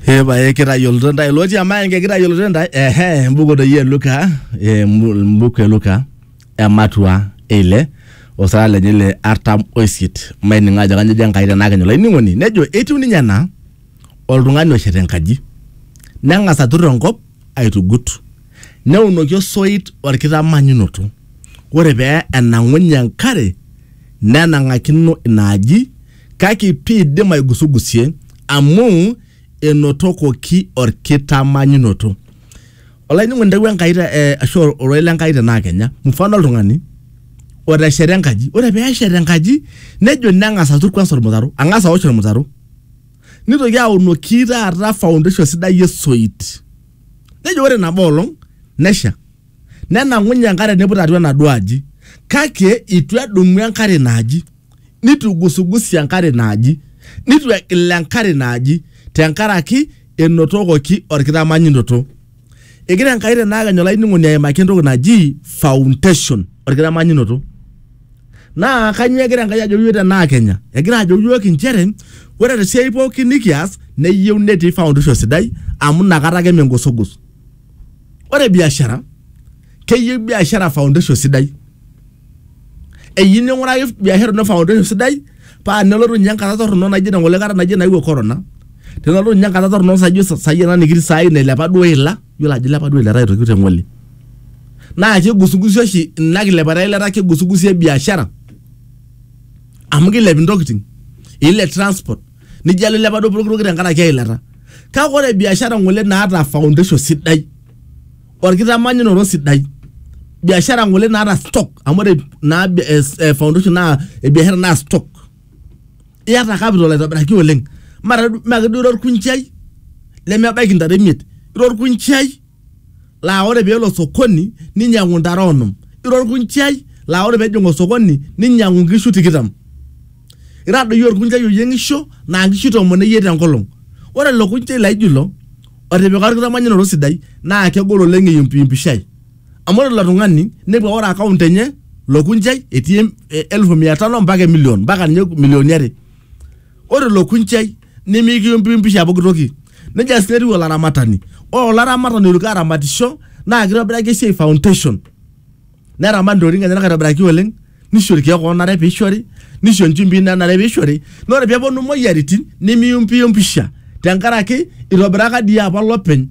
epae kitayioloto ntae lotii emaenge kitayioloto ntae ehe mbuku doi e luka eh, mbu- mbuku e luka ematua eile osara lenye le artam oisiet maining'o ajo kanyo ejo enkai tenaa kenyo laining'oni nejo etiu ninye ena oltung'ani oshet enkaji neng'as atur enkop aitugut Neunoki osoit olkitamanyunoto, ore pee enang'unye enkare nenang'akino ina aji, kake piidim aigusugusie amu enotokoki olkitamanyunoto. Olainining'oni intawuo Enkai ashu ororei le Nkai tenaa kenya, mfano oltung'ani otesheta enkaji, ore pee eshet enkaji nejo neng'as atur kwanza olmutaro, ang'as aosh olmutaro, neitoki aunoki taata foundation sidai e soit. nejo ore nabo olong nesha nenang'unye enkare neiput atua enaduo aji kake itu edumu enkare ina aji nitu igusugusie enkare ina aji nitu egil enkare ina aji tenkaraki enotokoki orkitamanyinoto egira enkai tenakenya olainining'oni aimaki entoki naji foundation orkitamanyinoto Naa kanyoo egira Enkai ajo iyiook tenaa Kenya? Egira ajo iyiook inchere ore te siai pooki nikias neyieu netii foundation sidai amu inakata ake mengosogos. Ore biashara keyieu biashara foundation sidai. Eyieu ning'uraki biashara ino foundation sidai paa tenelotu ninye enkata torrono naijo ina ng'ole kata naijo naewuo corona tenelotu ninye enkata torrono saijo sai ena nikitii sai nailepa duo eila yiolo ajo ilepa duo eilata aitoki te ng'ole naa kigusugusi oshi ina kilepata eilata kigusugusie biashara amu kilep intokiting ilep transport nijo alo ilepa duo pokitoki tenkaraki eilata kake ore biashara ng'ole naata foundation sidai. orkitamanyunoto sidai biashara ngole naata stock amu ore naa bi- eh, s- eh, foundation naa eh, biashara naa stock iyata capital aitobiraki oleng mara maa keduo ira orkunjai lemebaiki ntare imiet ira orkunjai laa ore peelo sokoni ninyiang'u ntare onom ira orkunjai laa ore pejing osokoni ninyiang'u nkishu tikitam ira doi orkunjai oyieng'isho naa nkishu tomon eyiet enkolong ore ilo kunjai laijo ilo otipika orkitamanyunoto sidai naa kegol oleng eyumpiyumpishai amu ore ilo tung'ani nepu ore account enye lokunjai etii em- e- elfu mia tano mpaka emilion mpaka ninye milioni are ore ilo kunjai nimikiyumpiyumpisha pooki toki nejia sii etiu olaramatani ore olaramatani oitoki aramatisho naa kitobiraki esiai foundation neramat ntokitin enyenak aitobiraki oleng nisho irkeek oonare piishori nisho inchumbi nanare piishori naa ore peeponu imoyiaritin nimiyumpiyumpisha tenkaraki itobiraka dii apa olopeny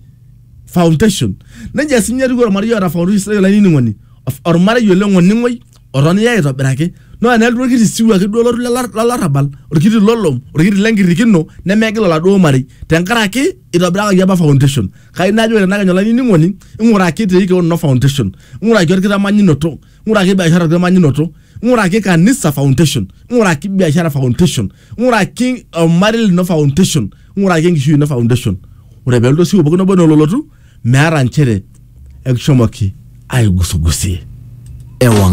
foundation nejia sinye etiu ormarei oota foundation sidai olainining'oni Of- ormarei oleng oning'oi otonyorra aitobiraki naa enelotu orkiti siwuo ake duo olotu lelo- lolarrabal orkiti lolom orkiti lenkirrikino nemegil oladuo marei tenkaraki itobirakaki apa foundation kai najo ore tenakenya olainining'oni ing'uraki tiiki kewon ino foundation ng'uraki orkitamanyunoto ng'uraki biashara orkitamanyunoto ng'uraki kanisa foundation ng'uraki biashara foundation ng'uraki ormarei lino foundation ng'uraki enkishui ino foundation ore pelotu osiwuo pookin obo nololotu meeta nchere ekishomoki aigusugusie ewang